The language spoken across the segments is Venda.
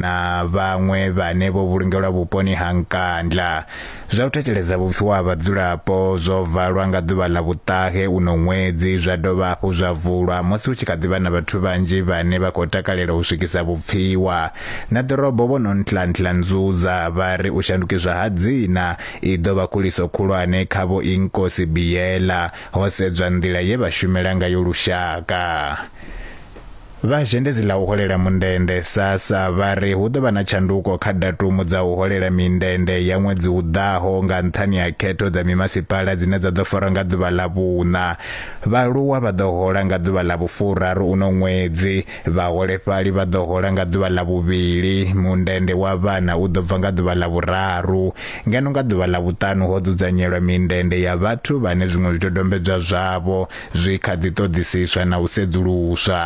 na vhaṅwe vhane vho vhulungelwa vhuponi ha Nkandla. Zwa u thetsheleza vhupfiwa ha vhadzulapo zwo valwa nga ḓuvha ḽa vhuṱahe uno ṅwedzi zwa dovha hafhu zwa vulwa musi hu tshi kha ḓivha na vhathu vhanzhi vhane vha khou takalela u swikisa vhupfiwa na ḓorobo vho no ntla ntla nzuza vha ri u shandukiswa ha dzina i ḓo vha khuliso khulwane kha vho Inkosi Biyela ho sedzwa nḓila ye vha shumela ngayo lushaka. Vha zhendedzi ḽa u holela mundende, SASSA, vha ri hu ḓo vha na tshanduko kha datumu dza u holela mindende ya ṅwedzi u ḓaho nga nṱhani ha khetho dza mimasipala dzine dza ḓo farwa nga ḓuvha ḽa vhuṋa. Vhaaluwa vha ḓo hola nga ḓuvha ḽa vhufuraru uno ṅwedzi, vhaholefhali vha ḓo hola nga ḓuvha ḽa vhuvhili, mundende wa vhana u ḓo bva nga ḓuvha ḽa vhuraru. Ngeno nga ḓuvha ḽa vhuṱanu ho dzudzanyelwa mindende ya vhathu vhane zwiṅwe zwidodombedzwa zwavho zwi kha ḓi ṱoḓisiswa na u sedzuluswa.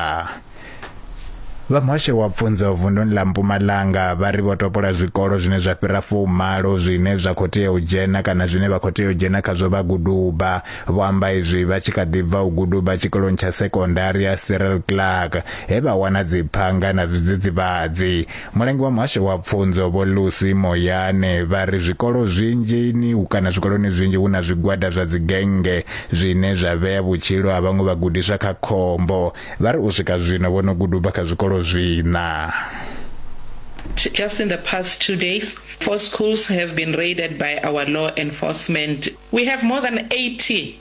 Vha muhasho wa pfunzo vunduni ḽa Mpumalanga vha ri vho topola zwikolo zwine zwa fhira fumalo zwine zwa khou tea u dzhena kana zwine vha khou tea u dzhena khazwo vha guduba. Vho amba izwi vha tshi kha ḓi bva u guduba tshikoloni tsha sekondari ya Cyril Clark he vha wana dziphanga na zwidzidzivhadzi. Mulangi wa muhasho wa pfunzo vho Lucy Moyane vha ri zwikolo zwinzhini kana zwikoloni zwinzhi hu na zwigwada zwa dzigennge zwine zwa vhea vhutshilo ha vhaṅwe vhagudiswa kha khombo. Vha ri u swika zwino vho no guduba kha zwikolo zwiṋa. Just in the past two days, four schools have been raided by our law enforcement. We have more than 80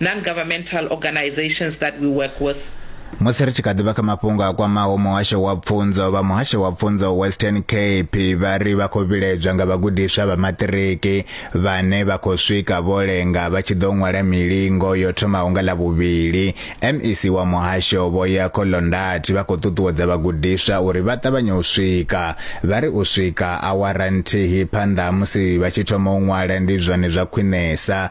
non-governmental organisations that we work with. musi ri tshi kha ḓivha kha mafhungo a kwamaho muhasho wa pfunzo vha muhasho wa pfunzo western cape vha ri vha khou vhiledzwa nga vhagudiswa vha maṱiriki vhane vha khou swika vho lenga vha tshi ḓo ṅwala milingo yo thomaho nga ḽa vhuvhili mec wa muhasho vho ya kholondati vha khou ṱuṱuwedza vhagudiswa uri vha ṱavhanye u swika vha ri u swika awara nthihi phanḓa musi vha tshi thoma u ṅwala ndi zwone zwa khwinesa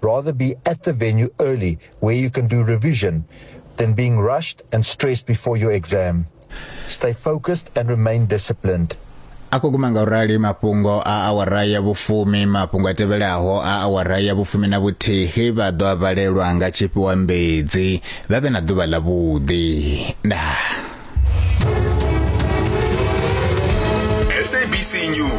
Rather be at the venue early where you can do revision than being rushed and stressed before your exam. Stay focused and remain disciplined. a khou guma nga u rali mafhungo a awara ya vhufumi mafhungo a tevhelaho a awara ya vhufumi na vhuthihi vha ḓo a valelwa nga tshifhiwa mbedzi vha vhe na ḓuvha ḽa vhuḓi ndaa SABC News.